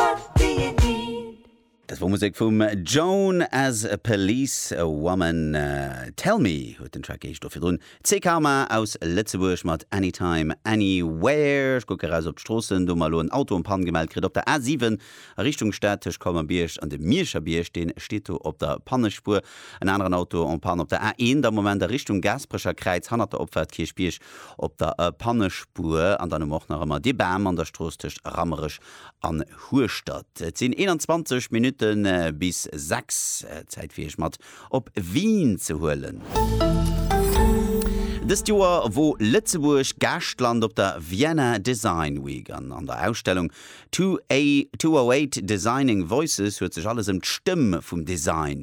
of being. Dat wor Musek vum Joan as a Policewoman. Tell Me huet den Track geheescht, do virdrun Tze Karma aus Lëtzebuerg mat Anytime Anywhere. Ech kucke raus op d'Stroossen, do hu mer elo en Auto en Panne gemellt kritt op der A7 a Richtung Stad tëscht Colmer-Bierg an dem Mierscher Bierg. Deen steet do op der Pannespuer. En aneren Auto en Panne op der A1 am Moment a Richtung Gaasperecher Kräiz hannert der Opfahrt Kierchbierg op der Pannespuer. An dann hu mer och nach ëmmer dee Bam an der Strooss tëscht Rammerech an Hueschtert. Et sinn 21 Minutte bis 6. Zäit fir Iech mat op Wien ze huelen. Dëst Joer wor Lëtzebuerg Gaaschtland op der Vienna Design Week an an der Ausstellung 208 Designing Voices huet sech alles ëm d'Stëmm vum Design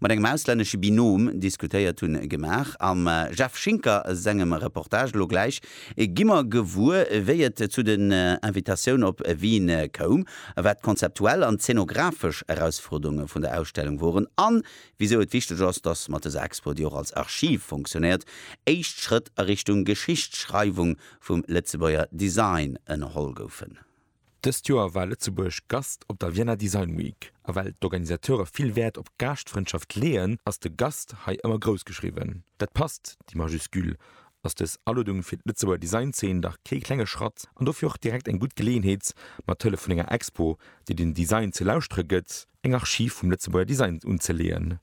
Mat engem auslännesche Binom diskutéiert hunn gemaach. Am Jeff Schinker sengem Reportage elo gläich gi mer gewuer, wéi et zu den Invitatioun op Wien koum, wat d'konzeptuell an d'zenografesch Erausfuerderunge vun der Ausstellung woren an wisou et wichteg ass, dass mat dëser Expo, déi och als Archiv funktionéiert, éischt Schrëtt a Richtung Geschichtsschreiwung vum Lëtzebuerger Design ënnerholl goufen. Dëst Joer war Lëtzebuerg Gast op der Vienna Design Week, a well d'Organisateure vill Wäert op Gaaschtfrëndschaft leeën, ass de Gast hei ëmmer grouss geschriwwen. Dat passt, déi Majuscule, ass dës Aluedung fir d'Lëtzebuerger Design-Zeen dach kee klenge Schratt an dofir och direkt eng gutt Geleeënheet, mat Hëllef vun enger Expo, déi den Design ze lauschtere gëtt, eng Archiv vum Lëtzebuerger Design unzeleeën.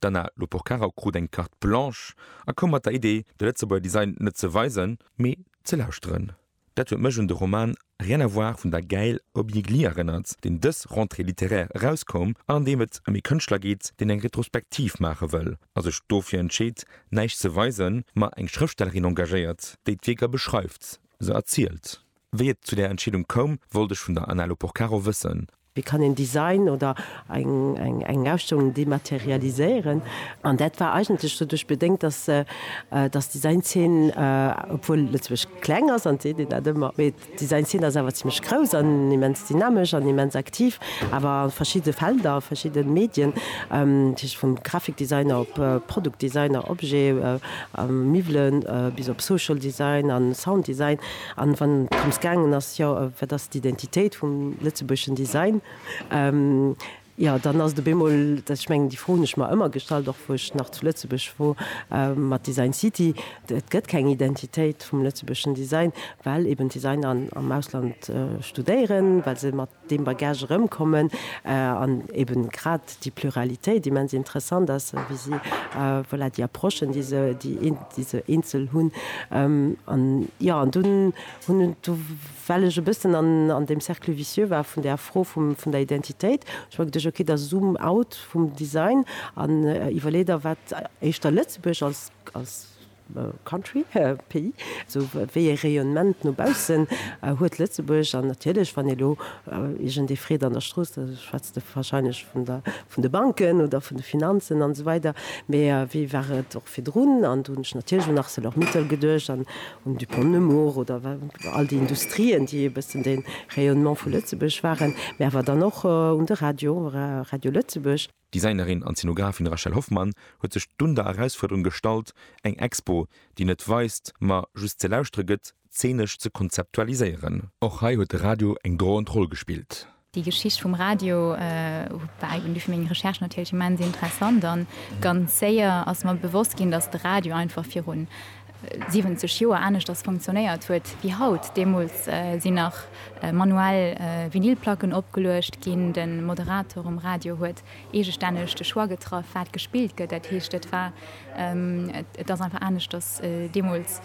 D'Anna Loporcaro krut eng Carte blanche a koum mat der Idee, de Lëtzebuerger Design net ze weisen, mee ze lauschteren. Dat huet mech un de Roman Rien à voir vun der Gaëlle Hobby-Gli erënnert, deen dës Rentrée littéraire erauskoum an an deem et ëm ee Kënschtler geet, deen eng Retrospektiv maache wëll a sech dofir entscheet, näischt ze weisen, ma eng Schrëftstellerin engagéiert, déi d'Wierker beschreift, se erzielt. Wéi et zu där Entscheedung koum, wollt ech vun der Ana Loporcaro wëssen. Wéi kann een Design oder eng Ausstellung dematerialiséieren? An dat war eigentlech doduerch bedéngt, datt d'Design-Zeen, obwuel Lëtzebuerg kleng ass, an et seet een dat ëmmer, mee d'Design-Zeen ass awer zimmlech grouss an immens dynamesch an immens aktiv, awer a verschiddene Felder, a verschiddene Medien, dat heescht vum Graphikdesigner op Produktdesigner, Objet, Miwwelen, bis op Social Design a Sounddesign. An wann et drëms gaangen ass, jo, wat ass d'Identitéit vum lëtzebuergeschen Design, jo, dann ass et op eemol, ech mengen, déi Fro hunn ech mer ëmmer gestallt, och wou ech nach zu Lëtzebuerg wor, mat Design City, et gëtt keng Identitéit vum lëtzebuergeschen Design, well eben d'Designer am Ausland studéieren, well se mat deem Bagage erëmkommen an eben grad déi Pluralitéit immens interessant ass, wéi si, voilà, déi Approchen, déi se, déi se eenzel hunn. An, jo, an dunn hunn, do well ech e bëssen an deem Cercle vicieux war vun där Fro vun der Identitéit, hu ech mer geduecht, okay, da zoom out vum Design an iwwerlee der, wat éischter Lëtzebuerg als, als Country, Pays, esou wéi e Rayonnement no baussen huet Lëtzebuerg. An natierlech, wann elo iergendee freet an der Strooss, da schwätzt e wahrscheinlech vun der, vun de Banken oder vun de Finanzen an esou weider. Mee wéi war et och virdrun? An do hunn ech natierlech un Arcelor-Mittal geduecht an un Dupont Nemours oder all déi Industrien, déi e bëssen de Rayonnement vu Lëtzebuerg waren. Mee awer dann och un de Radio, Radio Lëtzebuerg. D'Designerin an Szenografin Rachel Hoffmann huet sech dunn der Erausfuerderung gestallt, eng Expo, déi net weist, ma just ze lauschtere gëtt, zeenesch ze konzeptualiséieren. Och hei huet de Radio eng droend Roll gespillt. Déi Geschicht vum Radio war eeben duerch meng Recherche natierlech immens interessant an ganz séier ass mer bewosst ginn, datt de Radio einfach virun 70 Joer aneschters funktionéiert huet wéi haut. Deemools sinn nach manuell Vinylplacken opgeluecht ginn, de Moderator um Radio huet eegestänneg de Choix getraff, wat gespillt gëtt. Dat heescht, et war, et ass einfach aneschters deemools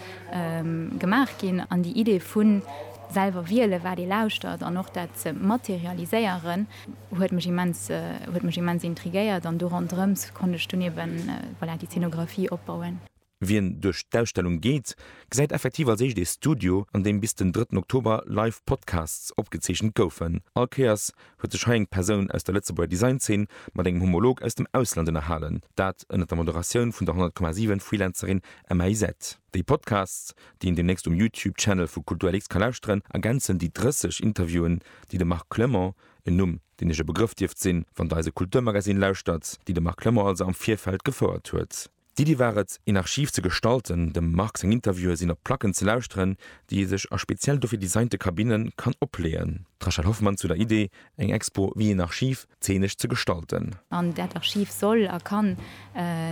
gemaach ginn. An déi Idee vu selwer wielen, wat ee lauschtert an och dat ze materialiséieren, huet mech immens, huet mech immens intriguéiert an do ronderëms konnt ech dunn eeben, voilà, déi Zeenografie opbauen. Wien duerch d'Ausstellung geet, gesäit effektiv als éischt ee Studio, an deem bis den drëtten Oktober live Podcasts opgezeechent goufen. All Kéiers huet sech hei eng Persoun aus der Lëtzebuerger Design-Zeen mat engem Homolog aus dem Ausland ënnerhalen, dat ënnert der Moderatioun vun der 100,7 Freelancerin Emma Isette. Déi Podcasts, déi een deemnächst um YouTube-Channel vu KulturLX ka lauschteren, ergänzen déi 30 Interviewen, déi de Marc Clement, en Numm, deen Iech e Begrëff dierft sinn, wann Der eise Kulturmagazine lauschtert, déi de Marc Clement also am Virfeld gefouert huet. D'Iddi war et, een Archiv ze gestalten, dem Marc seng Interviewe sinn op Placken ze lauschteren, déi ee sech a speziell dofir designte Kabinne kann opleeën. D'Rachel Hoffmann zu der Iddi, eng Expo wéi een Archiv, zeenesch ze gestalten. An dat Archiv soll a kann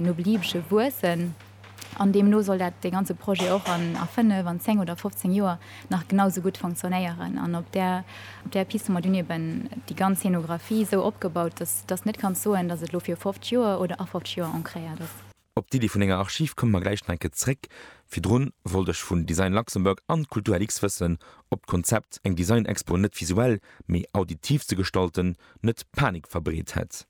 no Beliebege wuessen. An deemno soll dat, dee ganze Projet och a fënnef, an zéng oder fofzéng Joer nach genau sou gutt fonktionnéieren an op där op där Piste hu mer dunn eben déi ganz Scénographie sou opgebaut, dass dass net kanns soen, dass et elo fir 50 Joer oder a 50 Joer ancréiert ass. Op d'Iddi vun enger Archiv komme mer gläich nach eng Kéier zréck. Virdrun wollt ech vun Design Luxembourg an Kultur LX wëssen, ob d'Konzept, eng Design-Expo net visuell, mee auditiv ze gestalten, net Panik verbreet hätt.